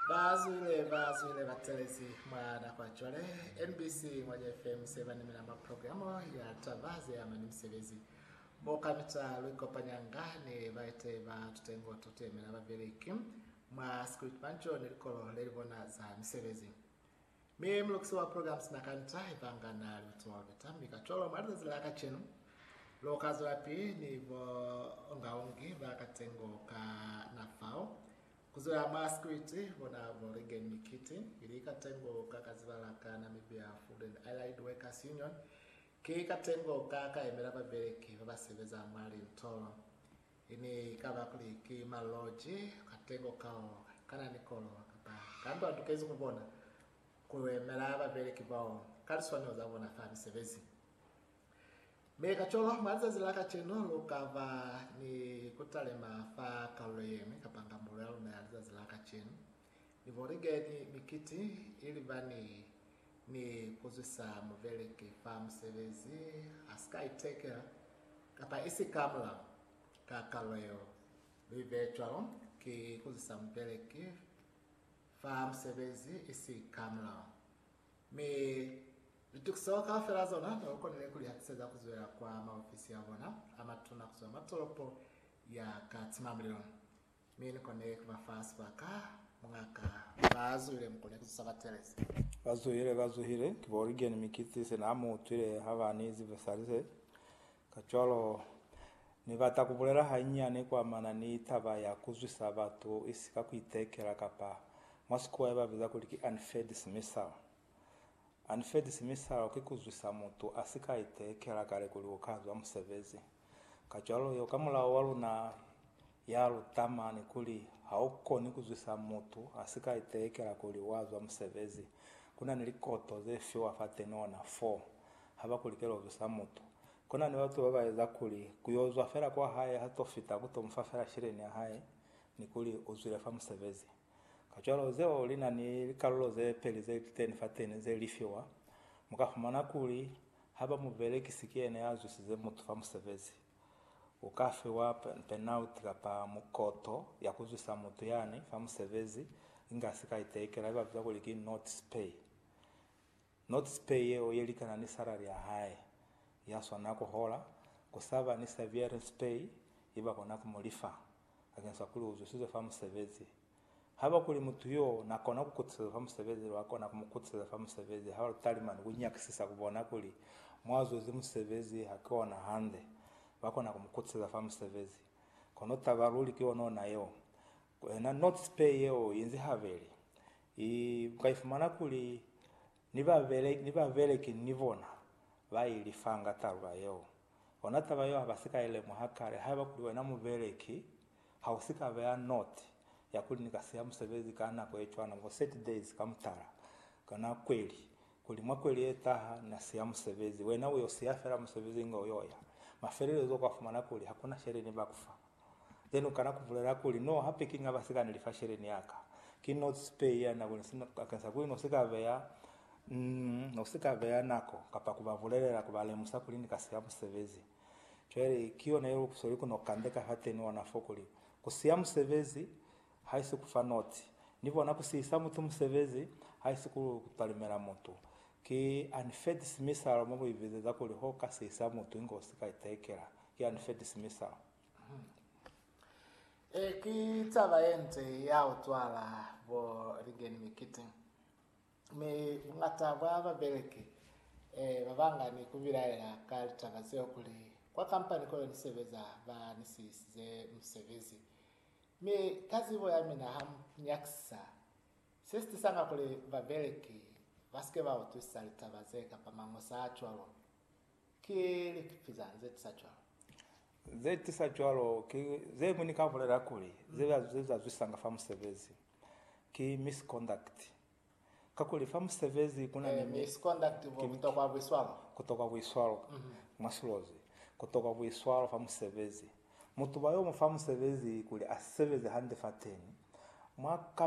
Bazwile bazwile batelezi mwa nako ya cwale, MBC Ngwanya FM se banimela mwa programo ya Taba Zeama ni Misebezi, mo kamita luikopanyanga ni baeteyi ba tutengo totuemela babeleki mwa Scriptmanjo ni likolo lelibona za misebezi. Mi mulukisi wa programs na kanta ibanga na li utoloveta, mi kacwalo mwa lizazi la kacenu lu ka zwelapili ni bo ungaungi ba katengo ka na fao, ku zwela mwa sikiliti bona bo Reagan Mikiti, ili katengo ka ka zibala ka Namibia Food and Allied Workers Union, ki katengo ka ka yemela babeleki ba ba sebeza mwa lintolo. I ne i ka ba kuli ki maloji katengo kao ka na ni kolo kapa kambe wa tukezi ku bona ku yemela babeleki bao ka liswanelo za bona fa misebezi. Mi kacwalo, mwa lizazi la kacenu, lu ka ba ni ku talima fa kalulo ye ñwi kapa ngambulo ya luna ya lizazi la kacenu. Liboligeni mikiti ilibani ni kuzwisa mubeleki fa musebezi asika itekela kapa isika mulaho. Ka kalo yeo, luibe cwalo, ki kuzwisa mubeleki fa musebezi isika mulaho. Mi litukiso kaufela zona nelukonile kulihatiseza kuzwela kwa maofisi abona amatuna kuzwa mwa tolopo ya Katimamulilo. Mi ni kone ku ba fa sibaka, mungaka. Ba zuhile mu kone ku zusa ba Teresa. Ba zuhile, ba zuhile. Ki bo Origen mi ki si se na mu utwile ha ba ni zi Versailles. Kacwalo, Ni bata ku bulela hanyinyani ku amana ni taba ya ku zwisa batu i si ka ku itekela kapa mwa Sikuwa i ba biza kuli ki unfair dismissal. Unfair dismissal ki ku zwisa mutu a si ka itekela kale kuli u ka zwa musebezi. Kacwalo yo ka mulao wa luna ya luta mani kuli ha u koni ku zwisa mutu a si ka itelekela kuli wa zwa musebezi. Ku na ni likoto ze fiwa fa tenona fo ha ba ku likela ku zwisa mutu. Ku na ni batu ba ba eza kuli ku yo zwa fela kwa hae ha to fita ku to mu fa fela sheleni ya hae ni kuli u zwile fa musebezi. Kacwalo zeo li na ni likalulo ze peli ze liteni fa teni ze li fiwa. Mu ka fumana kuli haiba mubelekisi ki yena ya zwisize mutu fa musebezi, u ka fiwa penalti kapa mukoto ya ku zwisa mutu yani fa musebezi inga sika iteikela, ye ba biza kuli ki notice pay. Notice pay yeo ye likana ni salary ya hae, ya swanela ku hola, ku sa ba ni severance pay ye ba kona ku mu lifa, bakeng sa kuli u zwisize fa musebezi. Haiba kuli mutu yo na kona ku kutiseza fa musebezi, lu ka kona ku mu kutiseza fa musebezi haiba lu talima ni ku nyakisisa ku bona kuli mo a zwezi musebezi ha ki ona hande, ba kona ku mu kutiseza fa musebezi. Kono taba luli ki yona ona yeo, ku ena notice pay yeo i nzi habeli, I ka ifumana kuli ni babeleki, ni babeleki ni bona ba i lifanga talula yeo. Ona taba yeo ha ba si ka i lemuha kale. Haiba kuli wena mubeleki ha u si ka beya noti ya kuli ni ka siya musebezi ka nako ye cwana, bo 30 days ka mutala, kana kweli, kuli mwa kweli ye taha na siya musebezi, wena u yo siya fela musebezi inge u yo ya. Mafelelezo u ka fumana kuli ha ku na sheleni ba ku fa. Then u kana ku bulela kuli, No, hape ki nga ba sikane lifasheleni ya ka. Ki no speya nako ni sina bakeng sa kuli no si ka beya, mm, no si ka beya nako kapa ku ba bulelela, ku ba lemusa kuli ni ka siya musebezi. Cwale ki yona ye lukuso li ku no kande ka fateni ona fo kuli, Ku siya musebezi, haisi ku fa notsi ni bona ku sihisa mutu musebezi haisi ku talimela mutu ki unfed simisalo mo buibizeza kuli ho ka sihisa mutu inge u si ka itekela ki unfed simisalo e ki taba ye nce ya u cwala bo ligeni mikiti mi bungata bwa babeleki e ba banga ni ku bilaela ka litaba zeo kuli kwa kampani ko ni sebeza ba ni sihisize musebezi Mi ka zibo ya mina ha mu nyakisisa se si tisanga kuli babeleki ba si ke ba utwisisa litaba ze kapa mañosa a cwalo, ki likipi zañi ze tisa cwalo? Ze tisa cwalo ki ze mwi ni ka bulela kuli ze zazwisanga fa musebezi, ki misconduct. Kakuli fa musebezi ku na ni misconduct bo kutokwa buiswalo. Kutokwa buiswalo mwa silozi. Kutokwa buiswalo fa musebezi. Mutuba yo mu fa musebezi kuli a sebeze hande fateni mwa.